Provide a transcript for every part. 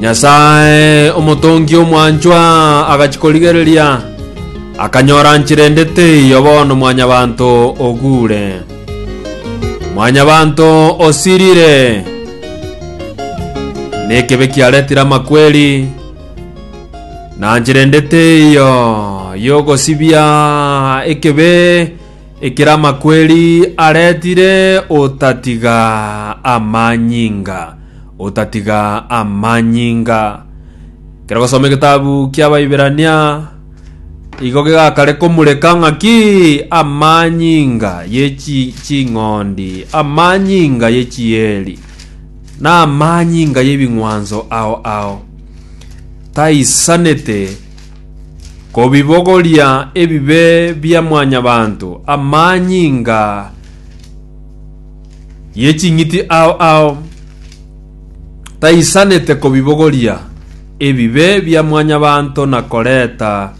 Nyasae, omotongi omwanchwa, agachia korigereria, akanyora nchera ende teiyo bono mwanyabanto oguure. Mwanyabanto osirire, nekebe kiaretire amakweri, na nchera ende teiyo y'ogosibia ekebe ekere amakweri aretire otatiga amanyinga. Otatiga amanyinga. Kero gosoma egetabu ki'Abaiberania igo gegakare komureka ng'aki amanyinga ye chi- ching'ondi, amanyinga ye chieri, na amanyinga y'ebing'wanso ao ao. Taisanete kobibogoria ebibe bia mwanyabanto, amanyinga ye ching'iti ao ao taisanete kobibogoria ebibe bia mwanyabanto na koreta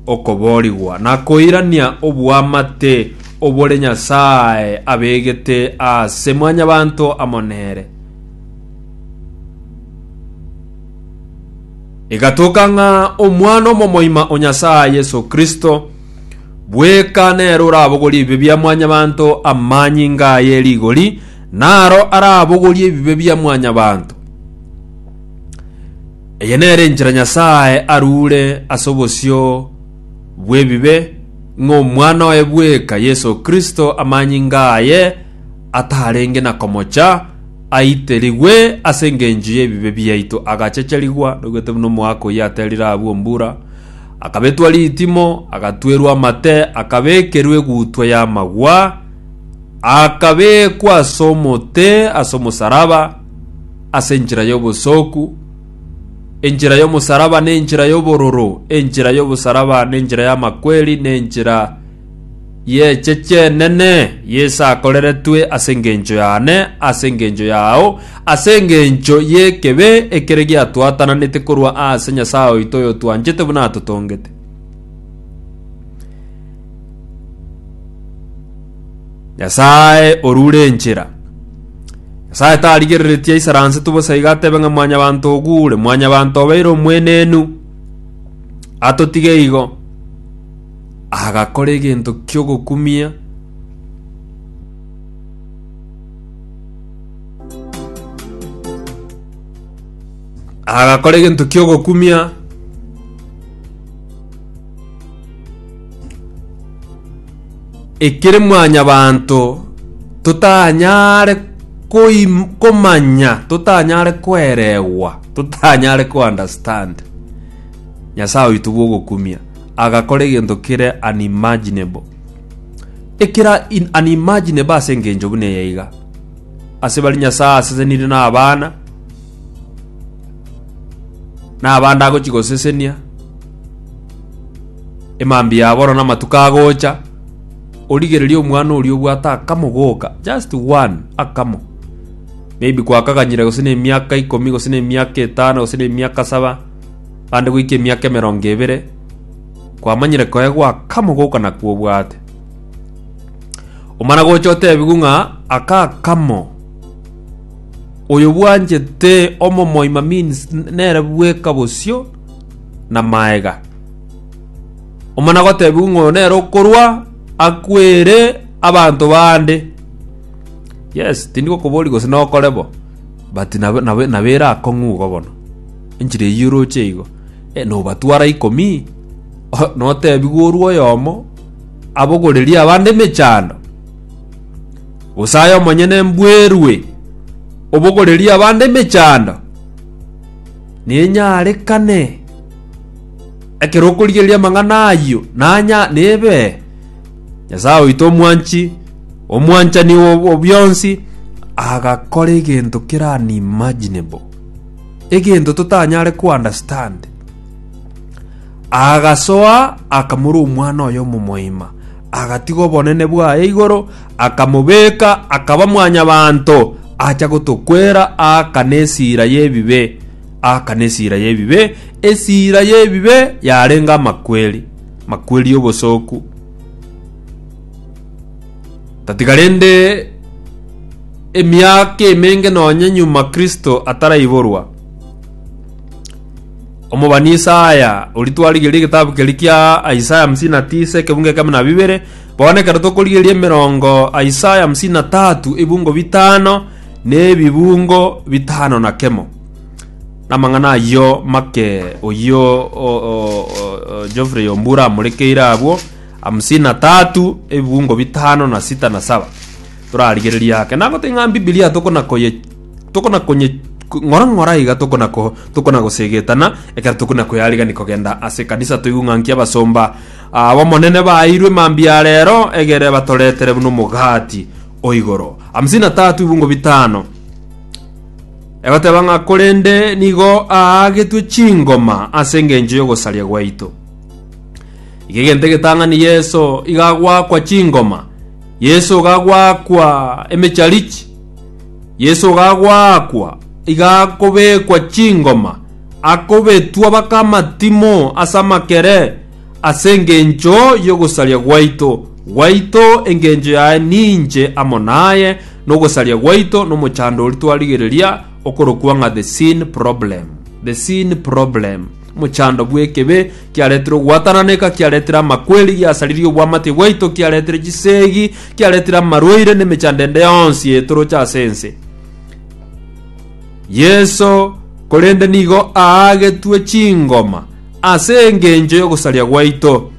okoboorigwa na koirania oboamate obore Nyasae abegete ase mwanyabanto amo nere. Egatoka ng'a Omwana omomoima o Nyasae, Yeso Kristo, Bweka nere orabogorie ebibe bia mwanyabanto amanyinga aye rigori, naro arabogorie ebibe bia mwanyabanto. Eye nere enchera Nyasae arure ase obosio bw'ebibe, ng'a Omwana oye bweka Yeso Kristo amanyinga aye atarenge na komocha, aiterigwe ase engencho y'ebibe biaito, agachecherigwa nogetebe nomoaka oyio aterire abwo mbura, Akabetwa ritimo, agatwerwa amate, akabekerwa egutwa y'amagwa, akabekwa ase omote ase omosaraba, ase enchera y'obosooku, enchera y'omosaraba nenchera y'obororo, enchera y'obosaraba nenchera y'amakweri, nenchera y'eche chi'enene Yeso akoreretwe ase engencho yane, ase engencho yao, ase engencho y'ekebe ekere giatwatananete korwa ase Nyasae oito oyotwanchete buna atotongete. Nyasae orure enchera. Nyasae tarigereretie aisaransetu bosa iga atebe ng'a mwanyabanto ogure, mwanyabanto obeire omwenenu, atotige igo. agakora egento ki'ogokumia, agakora egento ki'ogokumia, ekere mwanyabanto totanyare koim- komanya, totanyare koeregwa, totanyare ko-understand Nyasae oito bw'ogokumia. agakora egento kere unimaginable. Ekera in unimaginable ase engencho buna eye iga. Ase bari Nyasaye asesenire na abana, na abande agochi gosesenia, emambi yabo oro na amatuko agocha, origereria omwana oria obwate akamo goka, just one, akamo. Maybe kwakaganyire gose na emiaka ikomi, gose na emiaka etano, gose na emiaka saba, Ande goika emiaka emerongo ebere kwamanyire koegwa akamo goka nakwo obwate. Omana gocha otebigwe ng'a aka akamo oyo bwanchete omomoima means nere bweka bosio na maega. Omana gotebigwe ng'a oyo nere okorwa akwere abanto bande. Yes, tindi gokobori gose nokore bo but nab- nab- nabere akong'u igo bono. Enchera eyio oroche igo, nobatwara ikomi, notebigwe orue oyomo abogorerie abande emechando, gose aye omonyene mbwerwe obogorerie abande emechando, nenyarekane ekero okorigereria amang'ana ayio nanya nebe Nyasae oito omwanchi omwanchani o bwonsi agakora egento kera unimaginable. egento totanyare kounderstand. Agasoa akamura omwana oye omomoima, agatiga obonene bwaye igoro, akamobeka, akaba mwanyabanto, acha gotokwera aaka nesira y'ebibe, aaka nesira y'ebibe, esira y'ebibe yarenge amakweri, makweri y'obosoku. Tatiga rende emiaka emenge nonya nyuma Kristo ataraiborwa, omobani Isaya, oria twarigereria egetabu keria kia Isaya hamsini na tisa ekebungo ekemo na bibere, bono ekero tokorigereria emerongo Isaya hamsini na tatu ebungo bitano na ebibungo bitano na kemo. Namang'ana ayio make oyio o, o, o, o, Geoffrey Ombura amorekeire abwo, Hamsini na tatu, ebiungo bitano na sita na saba. Torarigereria ake. Nabo ting'a Bibilia tokona koye tokona konye ng'ora ng'ora iga tokona ko tokona gosegetana ekero tokona koyarigani kogenda ase kanisa toigwe ng'a nki abasomba abo monene bairwe mambia rero egere batoretere buna omogati oigoro. Hamsini na tatu, ebiungo bitano. Egoteba ng'a korende nigo aagetwe chingoma ase engencho y'ogosaria gwaito. Iga egento egetang'ani Yeso iga agoakwa chingoma, Yeso iga agoakwa emecharichi, Yeso iga agoakwa, iga akobekwa chingoma, akobetwa baka amatimo ase amakere, ase engencho y'ogosaria gwaito, gwaito engencho yaye ninche amo naye, na ogosaria gwaito nomochandori twarigereria okorokwa ng'a The Sin Problem, The Sin Problem. Mochando bw'ekibe kiaretire ogwatananeka, kiaretire amakweri, giasaririe obwamatie bwaito, kiaretire chisegi, kiaretire amarwaire n'emechando ende yonsi etoroche ase ense. Yeso korende nigo aagetwe chingoma ase engencho y'ogosaria gwaito.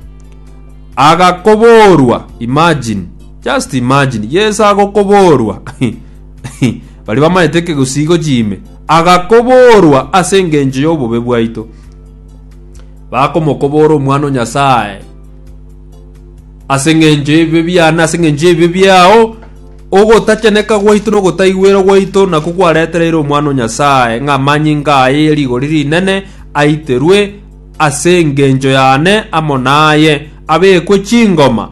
Agakoborwa, imagine, just imagine, Yeso agokoborwa. Bari bamaete ekegosigo chiime. Agakoborwa ase engencho y'obobe bwaito, bakomokobora Omwana o Nyasae ase engencho y'ebibe biane na ase engencho y'ebibe biao. Ogotacheneka gwaito na ogotaigwera gwaito nakwo kwaretereire Omwana o Nyasae ng'a amanyinga aye ye rigori rinene aiterwe ase engencho yane amo naye, abekwe chingoma,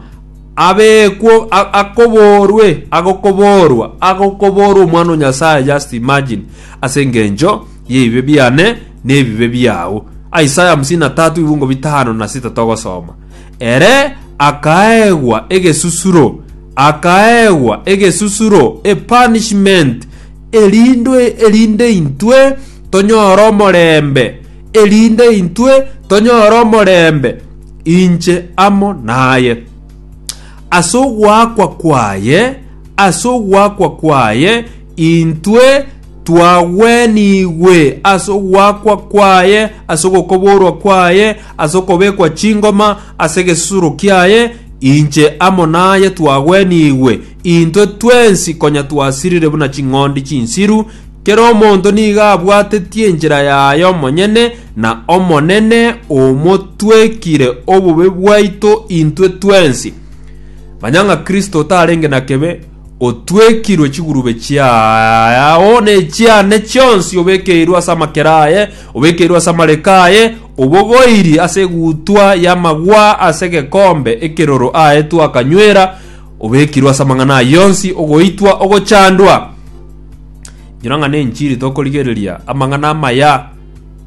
Abekwo, akoborwe, agokoborwa, agokoborwa Omwana o Nyasae, just imagine, ase engencho y'ebibe biane na ebibe biao. Isaya hamsini na tatu ibungo bitano na sita togosoma, Ere akaegwa egesusuro, akaegwa egesusuro, a punishment, erindwe erinde intwe tonyore omorembe, erinde intwe tonyore omorembe. inche amo naye. Ase ogoakwa kwaye, ase ogoakwa kwaye intwe twagwenigwe, ase ogoakwa kwaye, ase ogokoborwa kwaye, ase okobekwa chingoma, ase egesusuro kiaye, inche amo naye twagwenigwe, intwe twensi konya twasirire buna ching'ondi chinsiru, kera omonto nigo abwatetie enchera yaye omonyene, na Omonene omotwekire obobe bwaito intwe twensi. Manya ng'a Kristo otarenge na kebe, otwekirwe chigurube chiao nechiane chionsi, obekeirwe ase amakera aye, obekeirwe ase amareko aye, obogoiri ase egutwa y'amagwa ase egekombe ekeroro aetwe akanywera, obekirwe ase amang'ana aye onsi, ogoitwa, ogochandwa. Inyora ng'a nenchiri tokorigereria, amang'ana amaya,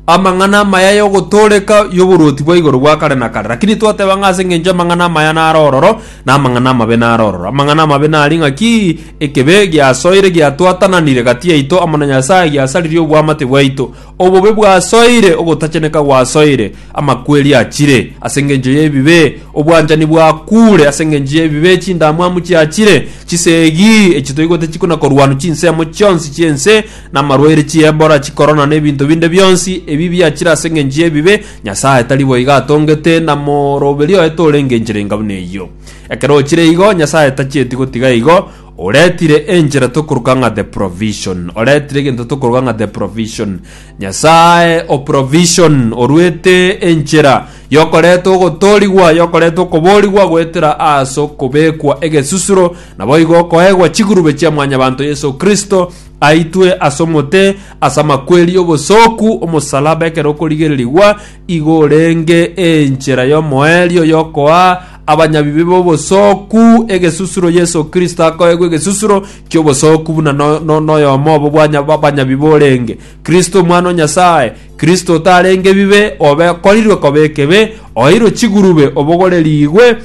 amang'ana amaya y'ogotooreka y'oboruoti bwa igoro bwa kare na kare. Lakini twateba ng'a ase engencho amang'ana amaya nare ororo, na amang'ana amabe nare ororo. Amang'ana amabe nari ng'aki? Ekebe giasoire giatwatananire gati yaito amo na Nyasae, giasaririe obwamate bwaito. Obobe bwasoire, ogotacheneka gwasoire, amakweri achire ase engencho y'ebibe, obwanchani bwakuure ase engencho y'ebibe, chindamwamu chiachire, chisegi echi toigwete chikona koruanwa chinsemo chionsi chi'ense namarwaire, chiebora, chikorona, na ebinto binde bionsi ebi biachire ase engencho y'ebibe, Nyasae tari boigo atongete, na moroberi oye torenge enchera enga buna eyio. Ekero ochire igo, Nyasae tachieti gotiga igo, oretire enchera tokoruka ng'a the provision. Oretire egento tokoruka ng'a the provision. Nyasae o provision oruete enchera yokoreta ogotoorigwa, yokoreta okoboorigwa goetera ase okobekwa egesusuro, naboigo okoegwa chigurube chia Mwanyabanto Yeso Kristo, Aitwe ase omote ase amakweri obosooku omosalaba ekero okorigererigwa igo orenge enchera y'omoerio yokoa abanyabibe b'obosooku egesusuro Yeso Kristo akoegwa egesusuro ki'obosooku buna no- no- noyomo obo bwanya abanyabibe orenge Kristo omwana o Nyasae Kristo otarenge ebibe obe korirwe koba ekebe oeirwe chigurube obogorerigwe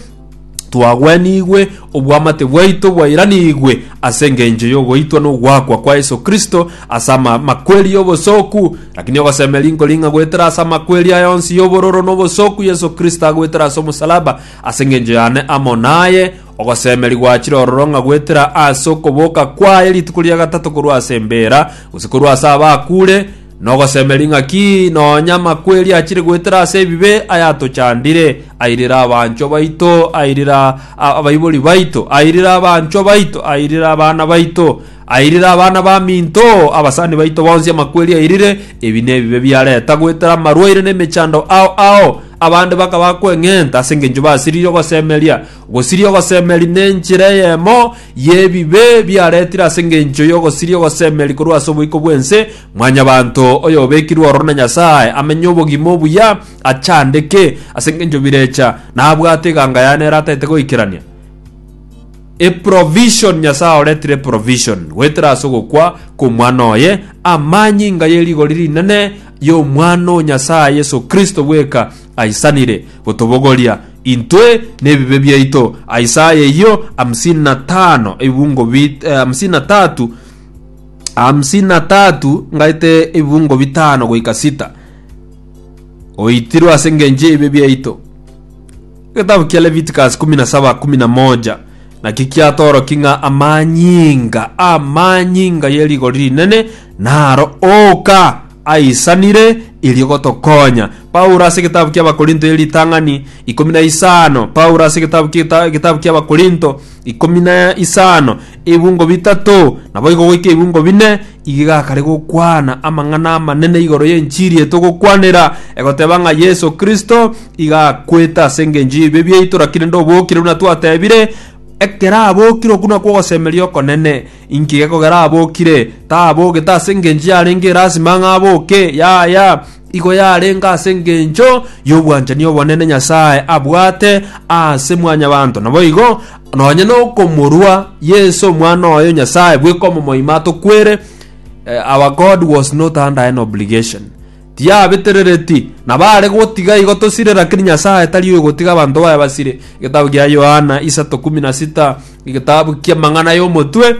twagwenigwe, obwamate bwaito bwairanigwe ase engencho y'ogoitwa n'ogoakwa kwa Yeso Kristo ase amakweri y'obosoku. Lakini ogosemeria nkori ng'a goetera ase amakweri aya onsi y'obororo n'obosoku Yeso Kristo agoetera ase omosalaba ase engencho yane amo naye, ogosemeria gwachire ororo ng'a goetera ase okoboka kwaye rituko ria gatato korwa ase embeera, gose korwa ase abakure, Nogosemeria ng'a ki nonya amakweri achire goetera ase ebibe ayatochandire, airire abanchwa baito, airire abaibori baito, airire abanchwa baito, airire abana baito, airire abana baminto, abasani baito bonsi amakweri airire, ebi nebibe biareta goetera amarwaire na emechando ao ao, abande bakaba kweng'enta ase engencho basiririe ogosemeria. Gosiria ogosemeria nenchera eyemo y'ebibe biaretire ase engencho y'ogosiria ogosemeria korwa ase oboiko bw'ense, Mwanyabaanto, oyobekirwe ororo na Nyasae, amenye obogima obuya, achandeke ase engencho birecha, na abwate eganga yaye nere ataete goikerania. Eprovision, Nyasae oretire eprovision, goetera ase ogokwa kw'omwana oye, amanyinga ye rigori rinene y'omwana o Nyasae Yeso Kristo bweka aisanire gotobogoria intwe nebibe biaito. Isaya eyio hamsini na tano ebibungo bi eh, hamsini na tatu hamsini na tatu ngaete ebibungo bitano goika sita oitirwe ase engencho yaibe biaito getabu kia leviticus kumi na saba kumi na moja naki kiatoroki ng'a amanyinga amanyinga ye rigori rinene naro oka aisanire erio gotokonya. Paulo ase egetabu ki'Abakorinto e ritang'ani ikomi na isano Paulo ase egetabu ki'eta- egetabu ki'Abakorinto ikomi na isano ebungo bitato naboigo goika ebungo bine iga gakare gokwana amang'ana amanene igoro y'enchiri etogokwanera egoteba ng'a Yeso Kristo iga akwete ase engencho y'ebibe biaito rakini nde obokire buna twatebire ekero abokire okwo nakwo ogosemeria okonene Inki gekogera abokire? Tabogete ase engencho yarenge erasima ng'a aboke, yaya, igo yarenge ase engencho y'obwanchani obonene Nyasae abwate ase mwanyabanto. Naboigo, nonye nokomorua Yeso omwana oye Nyasae bweka omomoima atokwere, eh, our God was not under any obligation. Tiabeterereti, na baare gotiga igo tosire, lakini Nyasae tari oyogotiga abanto baye basire. Egetabu gia Yohana, isato kumi na sita, egetabu ki'amang'ana y'omotwe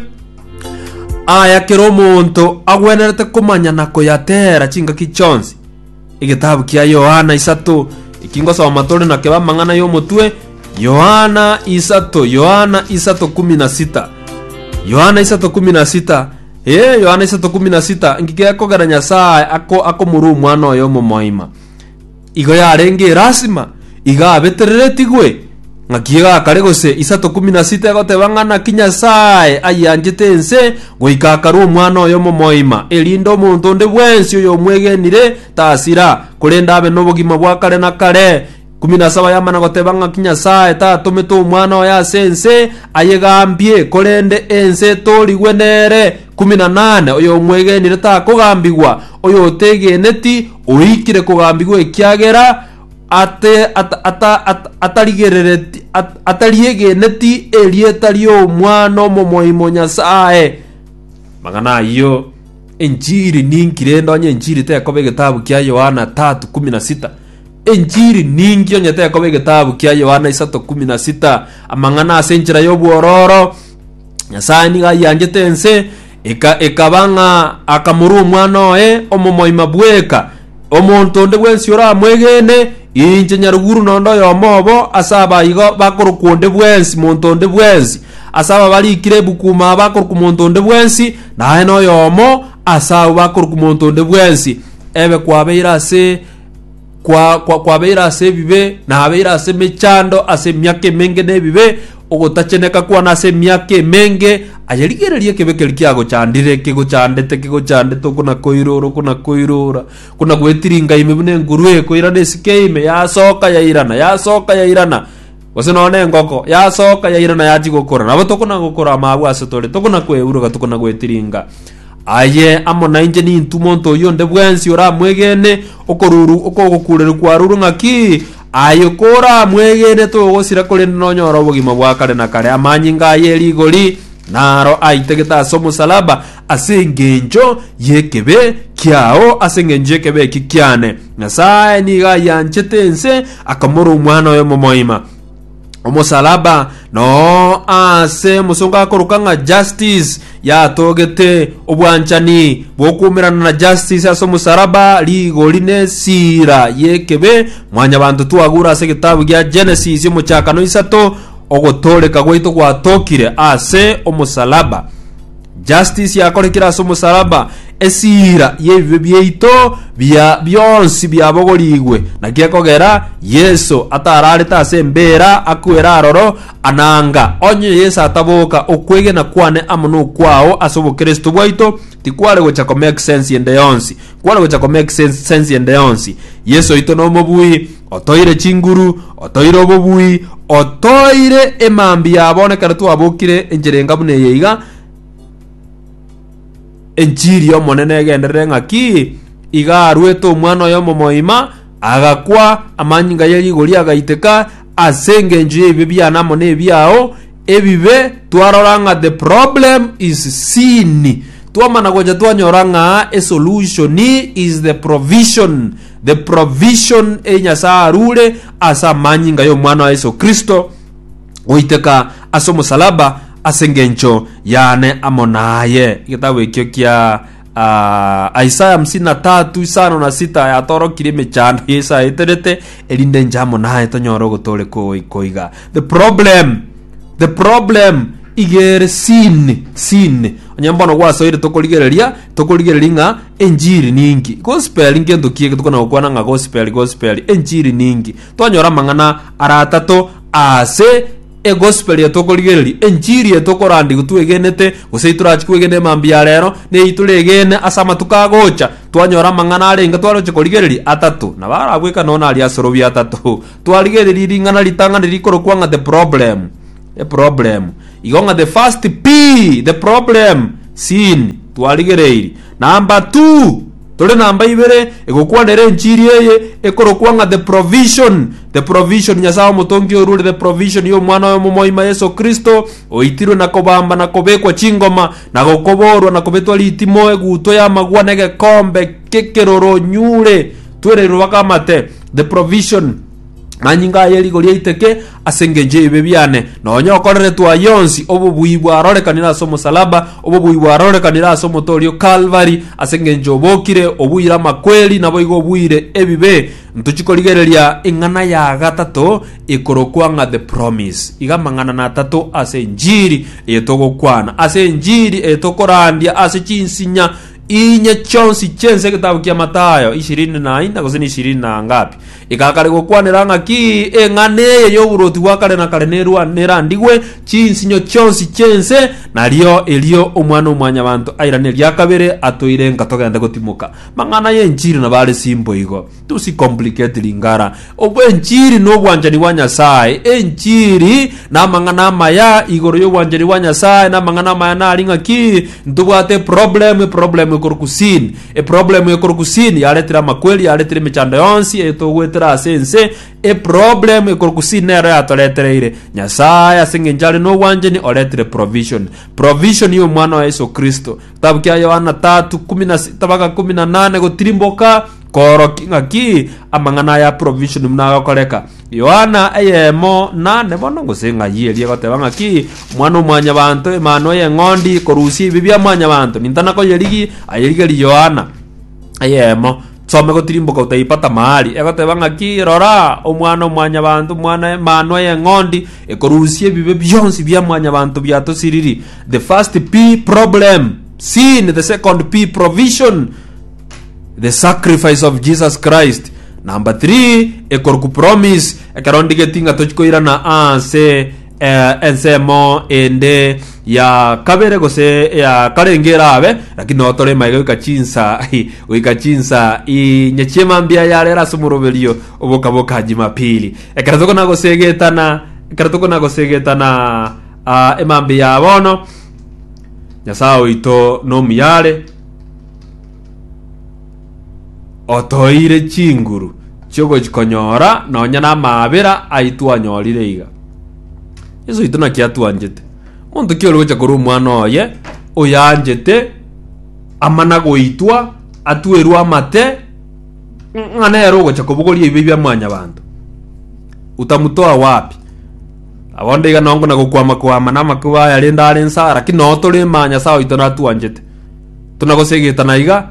aya kera omonto agwenerete komanya na koyateera chingaki chionsi. Egetabu kia Yohana isato eki ngosoma tore nakebe amang'ana y'omotwe Yohana isato Yohana isato kumi na sita Yohana isato kumi na sita Ee, Yohana isato kumi na sita, ngika ekogera Nyasae ako akomorua omwana oye omomoima. Igo yarenge erasima, iga abetereretigwe, ng'aki egakare gose isato kumi na sita egoteba ng'a naki Nyasae ayianchete ense goika akarua omwana oye omomoima, erinde omonto onde bwensi oyomwegenire tasira, korende abe nobogima bwa kare na kare. Kumi na saba yamana goteba ng'aki Nyasae tatomete omwana oye ase ense ayegambie, korende ense etorigwe nere. Kumi na nane oyomwegenire takogambigwa, oyotegeneti oikire kogambigwa ekiagera ate, ata, ata, ata, atarigerereti, at, atariegeneti erieta ri'omwana omomoimo Nyasae. Magana ayio enchiri ninki rende onye enchiri tekoba egetabu kia Yohana tatu kumi na sita. Enchiri ninki onye tekoba egetabu kia Yohana isato kumi na sita? Amang'ana ase enchera y'obwororo, Nyasae nigo ayianchete ense, eka ekaba ng'a akamorwa omwana oye omomoima bweka. Omonto onde bwensi oramwegene, inche nyaruguru nonde oyomo obo ase abaigo bakorokwa onde bwensi, monto onde bwensi. Ase aba barikire ebuku ime aba akorokwa monto onde bwensi, naye noyomo ase abwo bakorokwa monto onde bwensi. Ebe kwabeire ase kwa, kwa, kwabeire ase ebibe, nabeire ase emechando ase emiaka emenge na ebibe, ogotacheneka kwane ase emiaka emenge, aye rigereria ekebe keri kiagochandire, kigochandete, kigochandete, okona koirora, okona koirora, okona gwetiringa ime buna enguru ekoirana esike ime, yasoka yairana, yasoka yairana, Gose nonya nengoko yasoka yaira na yachia gokora, nabo tokona-gokora amaabwa ase tore, tokona-kweuruga, tokona-gwetiringa. Aye amo nainche nintwe monto oyio onde bwensi oramwegene, okoruru okogokureru kwarurwe ng'aki? Aye koramwegene togosira korende nonyore obogima bwa kare na kare. Amanyinga aye rigori naro aitagete ase omosalaba, ase engencho y'ekebe kiao, ase engencho y'ekebe eki kiane. Nyasae nigo ayanchete ense, akamora omwana oye momoima omosalaba noo ase omosongo akoroka ng'a justice yatogete obwanchani bw'okuumerana na justice ase omosalaba rigori ne esira y'ekebe mwanyabanto twagura ase egetabu gia genesis omochakano isato ogotooreka gwaito gwatokire ase omosalaba Justice yakorekire ase omosalaba, esiira y'ebibe biaito bia bionsi biabogorigwe, naki ekogera Yeso atararete ase embeera akwera aroro, ananga onye Yeso ataboka okwegena kwane amo nokwao ase obokristo bwaito tikware gocha komake sense ende yonsi kware gocha komake sense sense ende yonsi Yeso oito nomobui Otoire chinguru, otoire obobui, otoire emambia yabo, na ekero twabokire enchera enga buna eye iga, enchiri y'Omonene egenderere ng'aki, iga arwete omwana oye omomoima, agakwa, amanyinga ye rigori agaiteka, ase engencho y'ebibe biane amo nebiao, ebibe twarora ng'a the problem is sin. Twamana gocha twanyora ng'a esolution is the provision. The provision eye Nyasae arure ase amanyinga y'Omwana wa Yeso Kristo goiteka ase omosalaba ase engencho yane amo naye. Egetabu ekio kia uh, Isaya hamsini na tatu isano na sita yatorokire emechando ya Isaya eterete erinde nche amo naye tonyore ogotore koiga. The problem the problem igere sin sin onye mbono gwasoire tokorigereria Tokorigereria ng'a enchiri ninki? Gospel ngento ki eke tokona gokwana ng'a gospel gospel? Enchiri ninki? Twanyora amang'ana ara atato aase egospel eye tokorigereria, enchiri eye tokorandigwa twegenete gose itorachi kwegena emambia ya rero neyi toregene ase amatuko agocha. Twanyora amang'ana arenge twaroche korigereria atato, nabo arabweka nonya aria asorobia atato. Twarigereria ring'ana ritang'ani rikorokwa ng'a The Problem. The problem. Igo ng'a the first P, the problem, sin, twarigereiri. Number two, tore namba ibere, egokwana ere enchiri eye, ekorokwa ng'a the provision. The provision Nyasae omotongi orure, the provision ya omwana oye omomoima Yeso Kristo, oitirwe na kobamba na kobekwa chingoma, na gokoborwa na kobetwa ritimo, egutwa y'amagwa na egekombe k'ekeroro nyure twereirwe baka amate. The provision. Manyinga aye rigoria aiteke ase engencho y'ebibe biane, nonya okoreretwe ayio onsi, obobui bwarorekanire ase omosalaba, obobui bwarorekanire ase omoto oria o Kalvari, ase engencho obokire, obuire amakweri, naboigo obuire ebibe. Ntochi korigereria ing'ana ya gatato ekorokwa ng'a The Promise. Iga amang'ana na atato ase enchiri eye togokwana. Ase enchiri eye tokorandia ase chinsinya inye chionsi chiense egetabu kia Matayo ishirini na ina gose na ishirini na ngapi Igakare gokwanera ng'aki eng'ana eye y'oborwoti bwa kare na kare nerwa- nerandigwe chinsinyo chionsi chi'ense, nario erio Omwana-o-mwanyabanto airane eria kabere atoire nka togende gotimoka. Mang'ana y'enchiri nabo are simple igo. Tosicomplicate ringara. Ob- Enchiri nobwanchani bwa Nyasaye. Enchiri namang'ana amaya igoro y'obwanchani bwa Nyasaye, namang'ana amaya nari ng'aki ntobwate eproblem, eproblem ekorokwa sin. Eproblemu ye korwa kusini yaretire amakweri, yaretire emechando yonsi eye togoetera ase ense. Eproblemu ye korwa kusini nero yatoretereire. Nyasae ase eng'encho are n'obwanchani oretire provision. Provision ya omwana wa Yeso Kristo. Kitabu kia Yohana tatu kumi na sita mpaka kumi na nane gotirimboka koorokia ng'aki amang'ana aya provision buna agakoreka. Yohana eyemo nane bono, gose ng'ai eria egoteba ng'aki, Omwana-o-mwanyabanto, Emanwa y'Eng'ondi, korusia ebibe bia mwanyabanto, nintana koyerigi, ayerigerie Yohana eyemo. Some gotirimboka otaipata mahali, egoteba ng'aki, Rora, Omwana-o-mwanyabanto, Omwana Emanwa y'Eng'ondi, ekorusia ebibe bionsi bia mwanyabanto biatosiriri. The first P, problem, sin, the second P, provision, The sacrifice of Jesus Christ. Number 3 ekorokwa promise ekero ndigeti ng'a tochikoirana ase eh, ensemo ende ya kabere gose ya karenge erabe lakini nao tore maega goika chinsa goika chinsa inye chiema mbia yarera ase omoroberio obokaboka jumapili ekero tokona gosegetana ekero tokona gosegetana ah, emambi ya bono nyasaye oito nomuyare Otoire chinguru chi'ogokonyora nonya namaabera ai twanyorire iga. Yesu oito naki atwanchete. Monto ki ore gocha korwa omwana oye oyanchete amana goitwa atwerwe amate ng'a nere ogocha kobogoria ebibe bia mwanyabanto? Utamutoa wapi? Abonde iga nongo na gokwama kwama namakuba aya rende are nsa, lakini noo tore ma Nyasae oito natwanchete. Tonagosegeta na iga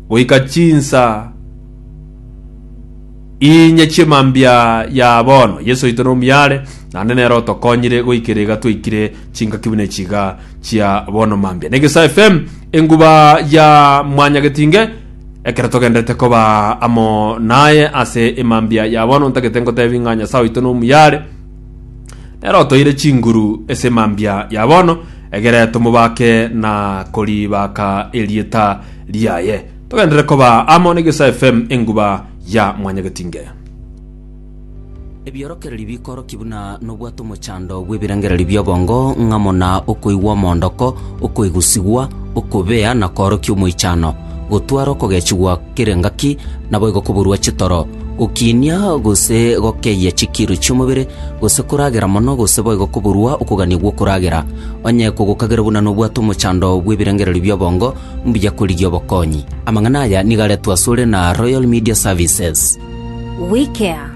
goika chinsa inye chi'emambia ya bono. Yeso oito nomuyare, naende nere otokonyire goikera iga twaikire chingaki buna echi iga chia bono mambia. Negesa FM, enguba ya Mwanyagetinge, ekero togenderete koba amo naye ase emambia ya bono, ntagete ngotebi ng'a Nyasae oito nomuyare, Nere otoire chinguru ase emambia ya bono, egere tomobake na koribaaka erieta riaye. Togenderere koba amo n'Egesaa FM enguba ya Mwanyagetinge. Ebiorokererio bikorokia buna nobwate omochando bw'ebirengererio bi'obongo, ng'a muna okoigwa omoondoko, okoigusigwa, okobea, na koorokia omoichano, gotware okogechigwa, Kera engaki, naboigo koburwa chitoro, gokiinia gose gokeyia chikiru chi'omobere, gose koragera mono, gose boigo koburwa okogania gw'okoragera. Onye kogokagera buna nobwate omochando bw'ebirengererio bi'obongo, mbuya korigia obokonyi. Amang'ana aya nigo aretwe asore na Royal Media Services. WeCare.